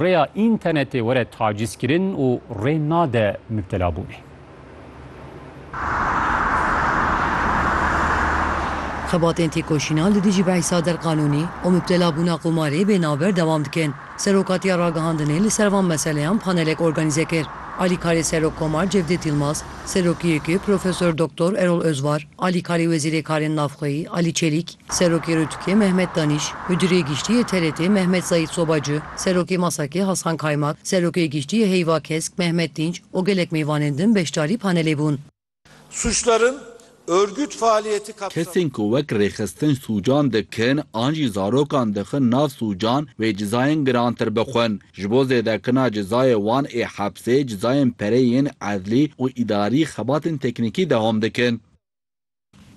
Rêya înternetê were tacîzkirin û rê nade mubtelabûnê. Xebatên têkoşîna li dijî behsa derqanûnî û mubtelabûna qumarê bê navber dewam dikin. Serokatiya Ragihandinê li ser van meseleyan panelek organîze kir. Alîkarê Serok Komar Cevdêt Yilmaz, Serokê YK'ê Profesor Doktor Erol Özvar, Alîkarê Wezîrê Karên Navxweyî Alî Çelîk, Serokê Rûtükê Mehmet Danîş, Mudîrê Giştî yê TRT'ê Mehmet Zayît Soba Cü, Serokê Masakê Hasan Kaymak, Serokê Giştî yê Heyva Kesk Mehmet Dînç û gelek mêvanên din beşdarî panelê bûn. Suçların örgüt faaliyeti kapsamında. Kesên ku wek rêxistin sûcan dikin an jî zarokan dixin nav sûcan wê cizayên girantir bixwin. Ji bo zêdekirina cizayê wan ê hepsê cizayên pereyên edlî û îdarî xebatên teknîkî dehom dikin.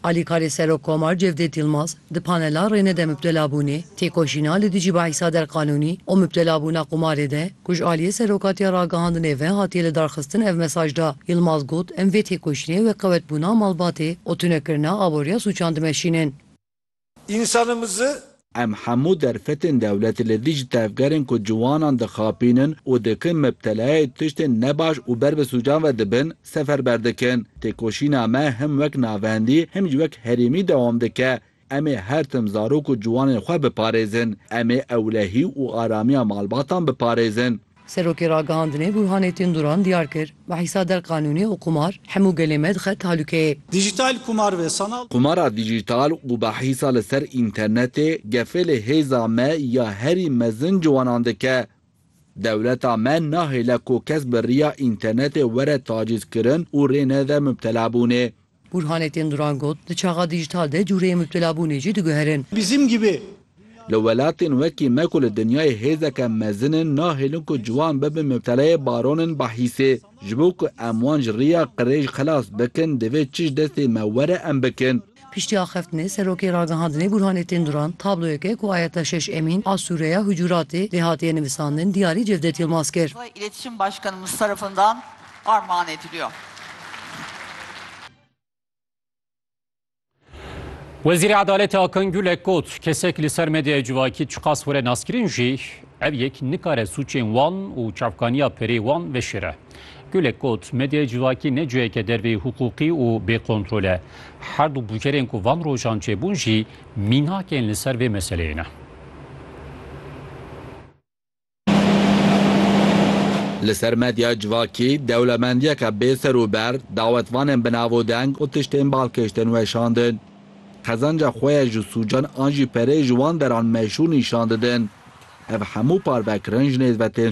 Alîkarê Serokkomar Cevdet Yilmaz di panela Rêne de Mubtelabûnê, Têkoşîna li dijî bahîsa derqanûnî û mubtelabûna qumarê de ku ji aliyê Serokatiya Ragihandinê ve hatiye lidarxistin ev mesaj da. Yilmaz got, Em vê têkoşînê wek qewetbûna malbatê û tunekirina aboriya sûcan dimeşînin. Însanimizi. Em hemû derfetên dewletê li dijî tevgerên ku ciwanan dixapînin û dikin mibtelayê tiştên nebaş û ber bi sûcan ve dibin, seferber dikin. Têkoşîna me him wek navendî him jî wek herêmî dewam dike. Em ê her tim zarok û ciwanên xwe biparêzin. Em ê ewlehî û aramiya malbatan biparêzin. Serokê Ragihandinê Burhanettin Duran diyar kir, Bi hisa der qanûnî û qumar hemû gelê me dixe tehlûkeyê. Dijîtal qumar ve sanal. Qumara dijîtal û bi hisa li ser înternetê gefê li hêza me ya herî mezin ciwanan dike. Dewleta me nahêle ku kes bi riya înternetê were tacîzkirin û rê nede mubtelabûnê. Bûrhanê tên Duran got, Di çaxa dîjîtal de cûreyê mubtelabûnê jî diguherin. Bizim gibi. Li welatên wekî me ku li dinyayê hêzeke mezin in nahêlin ku ciwan bibin mubteleyê baronên bahîsê. Ji bo ku em wan ji riya qirêj xilas bikin divê çi ji destê me were em bikin. Piştî axeftinê Serokê Ragihandinê Bûrhanê tên Duran tabloyeke ku Ayetla Şeş Emîn a sûreya Hucuratê lê hatiye nivisandin diyarî Cevdet Yilmaz kir. armağan ediliyor. Wezîrê Edaletê Akan Gulek got, kesek li ser medyaya civakî çiqas were naskirin jî ev yek nikare sûcên wan û çavkaniya perê wan veşêre. Gulek got, medyaya civakî ne ciheke derveyî hiqûqî û bêkontrol e. Her du bûcerên ku van rojan çêbûn jî mînak ên li ser vê meseleyê ne. Li ser medya civakî dewlemendiyeke bê ser û ber, dawetvanên bi navodeng û tiştên bal kiştin weşandin. Qezanca xwe ye ji sûcan an jî pereyê ji wan deran meşhûr nîşan didin. Ev hemû parvekirin ji nêzve tên